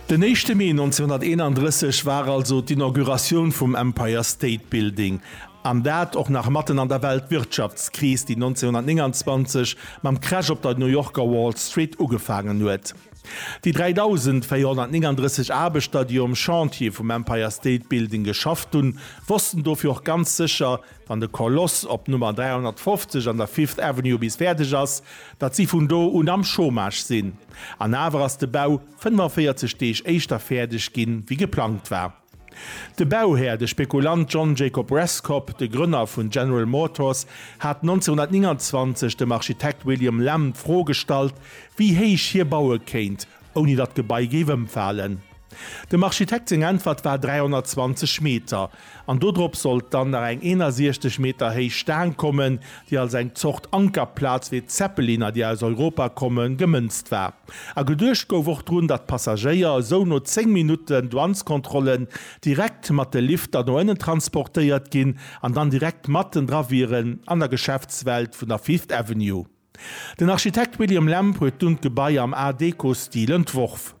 Den éischte Mee 1931 war also d'Inauguratioun vum Empire State Building, an dat och nach matten an der Weltwirtschaftskris, déi 1929 mam Crash op der New Yorker Wall Street ugefaangen huet. Déi 3.439 Aarbechter, déi um Chantier vum Empire State Building geschafft hunn, wossten dofir och ganz sécher, wann de Koloss op Nummer 350 an der Fifth Avenue bis fäerdeg ass, datt si vun do un am Chômage sinn. An awer ass de Bau 45 Deeg éischter fäerdeg gi wéi geplangt war. De Bauhär, de Spekulant John Jacob Rescopp, de Grënner vun General Motors, hat 1929 dem Architekt William Lamb d'Fro gestallt, wéi héich hie baue kéint, ouni datt d'Gebai géif ëmfalen. Dem Architekt seng Äntwert war 320 Meter, an dodrop sollt dann nach eng 61 Meter héich Staang kommen, déi als eng Zort Ankerplaz wéi d'Zeppeliner, déi aus Europa kommen, gemënzt war. A geduecht gouf och drun, datt d'Passagéier esou no 10 Minutten Douaneskontrollen direkt mat de Lifter no ënnen transportéiert ginn an dann direkt mattendra wieren an der Geschäftswelt vun der Fifth Avenue. Den Architekt William Lamb huet dunn d'Gebai am Art Déco-Stil entworf.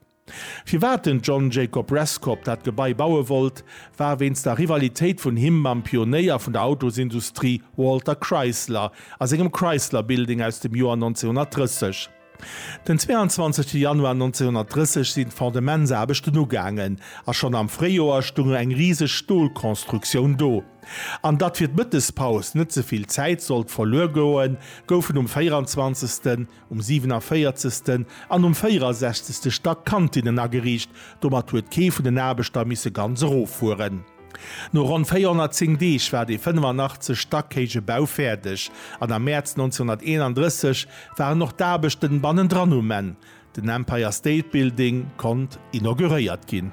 Firwat den John Jacob Rescob dat Gebai baue wollt, war wéinst der Rivalitéit vun him mam Pionéier vun der Autosindustrie Walter Chrysler a sengem Chrysler Building aus dem Joer 1930. Den 22 Januar 1930 sinn d'Fondementsaarbechten ugaangen a schonn am Fréijoer stoung eng riseg Stolkonstruktioun do. An datt fir d'Mëttespaus net ze vill Zäit sollt verluer goen, goufen um 24. um 47. an um 64. Stack Kantinnen ageriicht. Domat huet kee vun den Aarbechter misse ganz eroffueren. No ronn 410 Deeg war dee 85 Stack héije Bau fäerdeg an am Mäerz 1931 waren och d'Aarbechten bannendran um Enn. Den Empire State Building konnt inauguréiert ginn.